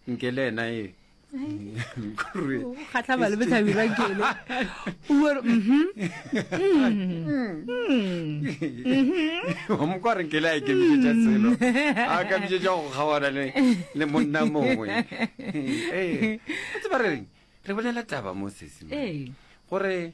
nke le ena e kgatlha ba le botlhabi ba kele uore mhm. mhm. wa moko a re nkele a e kemisetša selo a kemisetša go kgawana le monna mongwe ee. ee. a tseba re reng re bolela taba mo sesima ee. gore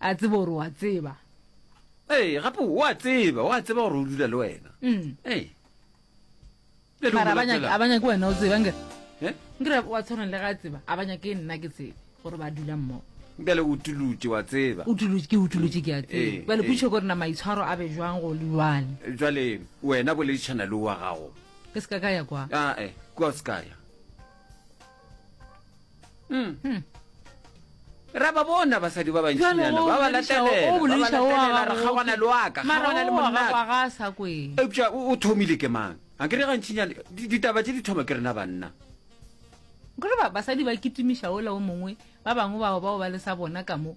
A tseba gore o a tseba. Ee, gape o a tseba, o a tseba gore o dula le wena. Mm. Ee. Bjale o Mara mo abanya latela. abanya ke wena o tseba ngere. Eh? Ngere wa tshwana le ga a tseba abanya ke nna ke tsebe gore ba dula mmogo. Bjale o tulutše wa tseba. O tulutše ke utulutše ke a Ee, tseba. Bale ee. putšo gore na maitshwaro a be jwang go le jwale. Bjale wena boledišana le wa gago. Ke se ka ka ya kwa. Ae, kua se kaya. mm. hmm. ra ba bona basadi ba bantsinyana ba ba latelela re kgawana le waka kgawana le monnaka eupša o thomile ke mang a kere gantsinyana ditaba tse di thoma ke rena banna kore basadi ba kitimiša ola o mongwe ba bangwe bao bao ba le sa bona ka mo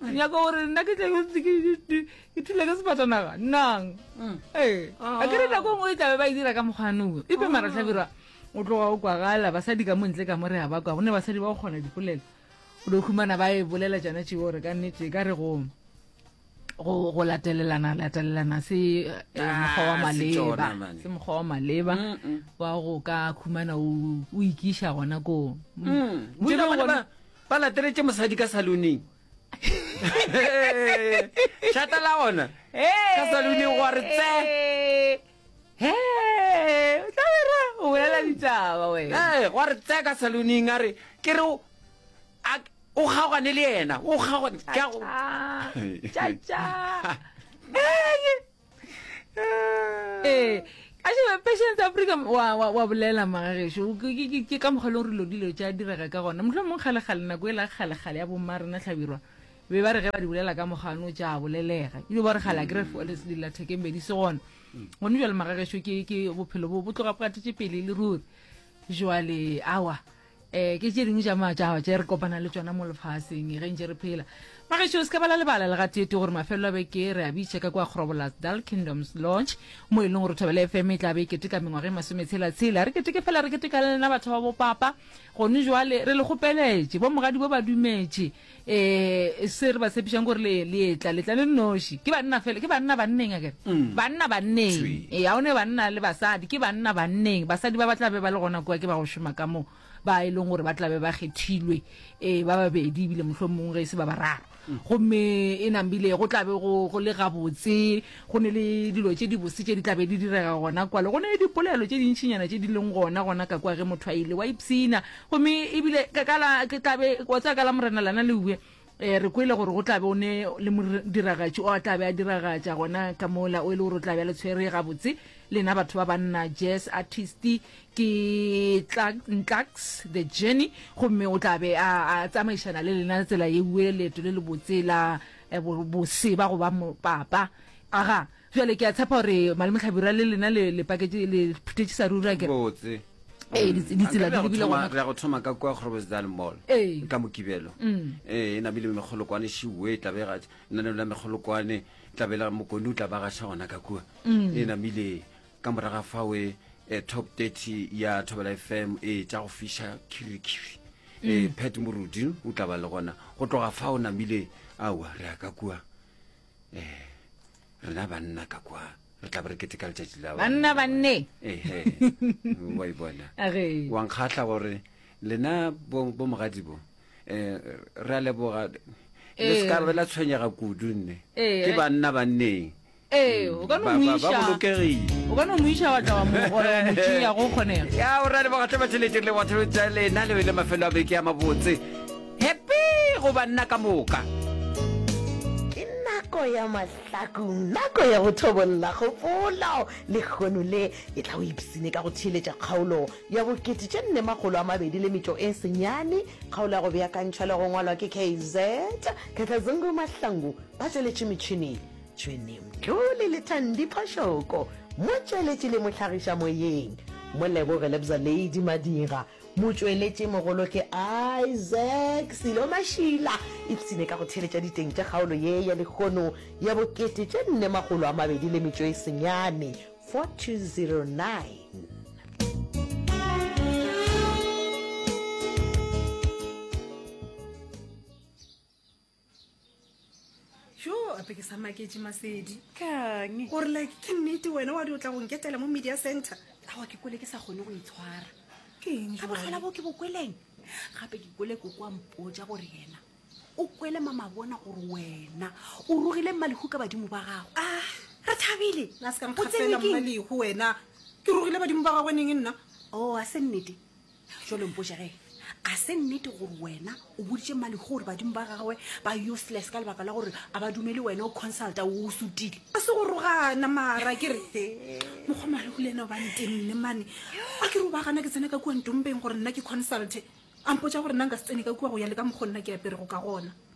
o nyaka gore nna ke tlabe ntse ke- ke- ke- ke thula ke sefatanaga nnang Mm. ee a ke re nako ngwe e tlabe ba e dira ka mokgwanong epe mara tlhabirwa o tloga o kwagala basadi ka montle ka mo re a ba kwa gonne basadi ba go kgona dipolelo o do humana ba e bolela tsona tšeo gore ka nnete e ka re go go go latelelana latelelana se eh, mokgwa wa Ah, se tsona, maleba man. se mokgwa wa maleba Mm-mm. wa go ka khumana o o ikiša gona koo Mm. Ntše e le Bolela gore gona- ba- Ba lateletše mosadi ka saluneng. Šata la gona ka saluneng go re tse. He, o tla bera o bolela ditaba wena. Eh, go re tse ka saluneng a re ke re o- a- o kgaogane le yena, o kgaogane. Ke a go- Cha cha. ee a sheba patience africa wa, wa, wa bolela magageso ke, ke, ke, ke ka mokgwa e leng gore lo dilo tša direga ka gona motlho mongwe kgalegale nako e la kgalegale ya bomma rena tlhabirwa be ba re ge ba di bolela ka mogano tša bolelega ebile ba re gale a kry dilathekembedi se gona gone jale magageso ke bophelo bo bo tloga bo gatetše pele e le ruri jale awa um ke tše dingwe tša matšaba tše re kopana le tsona mo lefaseng ge ntse re phela magešo se ka bala lebala le gateete gore mafelelo a beke re a bitšha ka kwa grobolas dal kingdoms lodge mo e leng gore thobele fm e tla be e keteka mengwaga e masometshela-tshela re keteke fela re keteka le lena batho ba bopapa gone jwale re le kgopeletše bo mogadi bo ba dumetše um se re ba tshepišang gore le le etla letla le noši ke banna fela ke banna banneng akere mm. banna banneng Sweet. ee ga o ne banna le basadi ke banna banneng basadi ba ba tla be ba le gona kua ke ba go šoma ka moo ba e leng gore ba tla be ba kgethilwe um ba babedi ebile motlho mongwe ge e se ba bararo mm. gomme e nambile go tlabe go go le gabotse go ne le dilo tse dibose tse di tlabe di direga gona kwale go ne le dipolelo tse dintšhinyana tse di leng gona gona ka kwa ge motho a ile wa ipshina Gomme e bile ka, ka la, ke tla be, wa tseba, ka la Morena lana le uwe, eh, re kwele gore go tla be o ne le modiragatši o a tla be a diragatša gona ka mola, o e le gore o tla be a le tshwere gabotse, lena batho ba banna, jazz artist, ke Ntlux, The Journey, gomme o tla be a, a tsamaišana le lena tsela ye uwe, leeto le lebotse la eh, bo, boseba go ba mopapa. Aga. Bjale ke a tshepa gore Malome Hlabirwa le lena le, le paketše, le phuthetše sa ruri, akere? Botse. Ee, Mm. ditsi- ditsela Akere di re a go lebile thoma- gona. re a go thoma ka kwa Groblersdal Mall Ee. ka mokibelo Mm. ee e namile megolokwane šiwe tla bega lenaneo la megolokwane tla bela mokone o tla ba gaša gona ka kua Mm. e namile ka moraga fawe eh, top 30 ya thobela fm e tša go fiša khirikiri e Mm. pet morudi o tla ba le gona go tloga fa o namile aowa re ya ka kua eh rena banna ka kwa re tla re keteka letšatši la banna banne ehe wa e bona wa nkgatlha gore lena bo mogadi bo um re a leboga le se ka be la tshwenyega kudu nne ke banna banneng ya o ra lebogatlhe batšhelete le batho tsa lena le bele mafelo a beke ya mabotse Happy go banna ka moka. Ke nako ya mahlakung, nako ya go thobolla kgopolo. Lehono le e tla go ipsine ka go theeletša kgaolo ya bokete tše nne makgolo a mabedi le metšo e senyane. Kgaolo ya go beakantšhwa le go ngwalwa ke KZ Khakhazungu Mahlangu ba tšweletše metšhini Tshwene Mtlole le Thandi Phoshoko. Motšweletši le mohlagiša moyeng Moleboge Lebza Lady Madira. Motšweletši mogolo ke Isaac Silo Mashila. Ipshine ka go theeletša diteng tša kgaolo ye ya lehono ya bo kete tše nne makgolo a mabedi le metšo e senyane, 4209. jo ape ke sa maketše masedi kang gore like ke nnete wena wa di o tla go nketela mo media center awa ke kwele ke sa kgone go itshwara ka botlhola bo ke bo kweleng gape ke kwele koko a mpotsa gore yena o kwele mamabona gore wena o rogile mmalehu ka badimo ba gago a ah, re thabile o tsenekeng mmalehu wena ke rogile badimo ba gagwe neng nna o oh, a se nnete jalo mpoša ge a se nnete gore wena o boditše mali gore badimo ba gagwe ba useless ka lebaka la gore a ba dumele wena o consulta o sutile a se go rogana mara ke re mokgwa mareku le ena o bantenne mane a ke re o ba gana ke tsena ka kua ntompeng gore nna ke consulte a mpotsa gore nna nka se tsene ka kua go ya le ka mokgwa nna ke aperego ka gona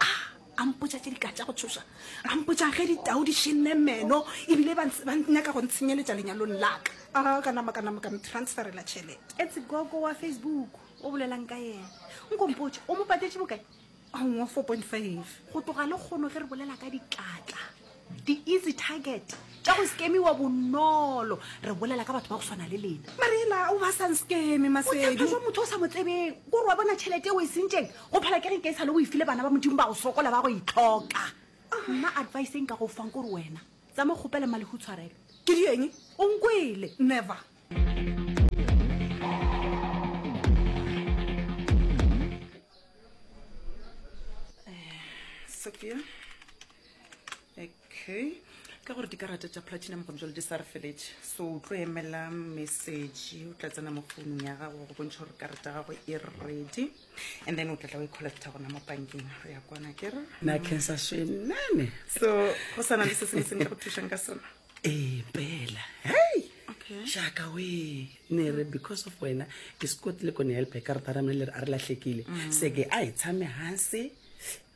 a a mpotsa tse di ka tša go tshosa a mpotsa ge ditau di šenne meno ebile ba nyaka go ntshenyeletša lenyalong laka a ka nama ka nama ka mtransferela tšhelete etse gogo wa facebook o bolelang ka yena nkompotsa o mo patetše bokae a ngwa four point five go tloga le kgono ge re bolela ka dikatla Di-easy target tša go skemiwa bonolo re bolela ka batho ba go swana le lena marela o ba sang skeme maseduaa motho o sa mo tsebeng kore wa bona tšhelete o e sentšeng go phela ke ge ke e sale o e file bana ba modimo ba go sokola ba go itlhoka nna advice e nka go fang kore wena tsa mo kgopele malego tshwarelo ke di eng o nkwele never eh, Sophia okay ka gore dikarata tša platinum gone jale di sa re feletse so o tlo emela message o tla tsena mo founung ya gago go bontšha gore karata ya gago e ready and then o tlatla o e collecta gona mo bankeng re ya kwana kere na cancer shenane so go sana le se sengwe se nka go thušang ka sona ee pela hei jaaka we ne re because of wena ke sekotile kone help e karata ramele a re latlhekile mm. seke a e tshame gase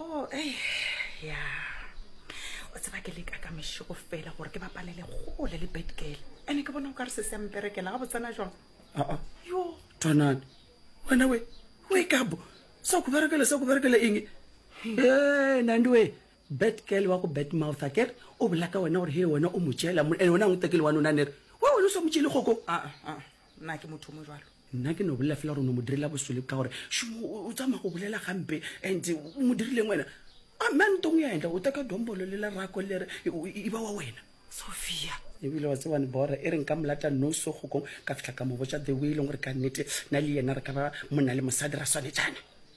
Oh, eh, ya. O tseba ke leka ka mešego fela gore ke bapalele gole le Betgirl. Ene ke bona o ka re se se a mperekela ga botsana jwang. Aa, Yo, twanane. Wena we, we kabo. Sa ku berekele, sa ku berekele eng? Eh, Nandi we. Bet girl wa go bet mouth a kere o bola ka wena gore he wena o mo tšela mo ene wena ngwe tekele wa nona nere wa wena o sa mo tšele kgoko Ah, ah, Nna ke motho o mo jalo. Nna ke no bolela fela gore o no mo direla bosole ka gore šumo o tsamaya go bolela gampe and o mo dirileng wena. A mme a ntong ya endla o teka dombolo le lerako le re e ba wa wena. Sophia. ebile wa tsebane bora e reng ka molata noso gokong ka fitlha ka mo botša the way e leng gore ka nnete na le yena re ka ba monna le mosadi ra swanetšana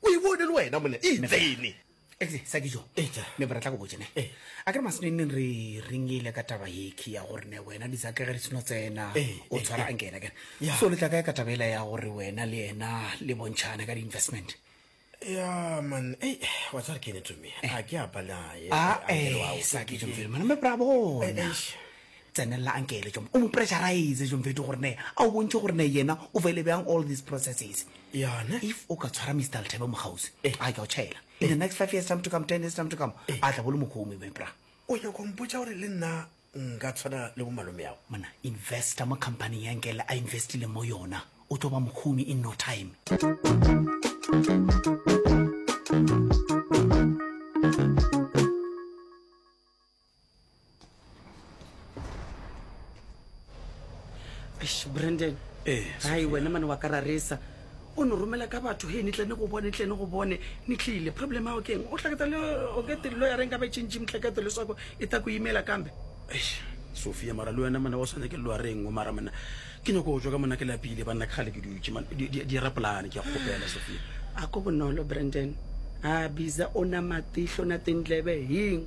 O e bone le wena monna. E tsene. Ehle, Sakijo. Eja. Ne ba re tla go botša ne. A kere masnenneng re ringile ka taba yekhi ya gore ne wena Disake ge re seno tsena o tshwara anke yena kere. So le tla kae ka taba ela ya gore wena le yena le bontšhane ka di-investment? ya man ei wa tsare kene to me a ke a balaye a eh sa ke jomfele mana me bravo eish Tsenelela anke ele tšom o mo pressurize tšom fetho gore ne a o bontšhe gore ne yena o faile bjang all these processes. Yona. If o ka tshwara Mister Lethebe mokgauswi, Eh. a ke a o tšhaela. In the next five years time to come, ten years time to come, Eh. a tla bo le mokhoumi my bra. O nyaka go mpotša gore le nna nka tshwana le bo malomeago? Monna, investor mo company ya nke le a investileng mo yona o tlo ba mokhoumi in no time. brandon ee hai wena mane wa ka ra resa o ne romela ka batho he ni tlene go bone tlene go bone ni tlile problem ao keng o tlhaketa le o ke te lo ya reng ka be tšintši mtlhakete le swako e ta ku imela kambe sofia mara le wena mane o swane ke lo ya reng o mara mona ke nyako go tswa ka mona ke lapile ba nna ke gale ke dutše man di era polane ke ya kgopela sofia a ko bonolo brandon a biza o na matihlo na tendlebe heng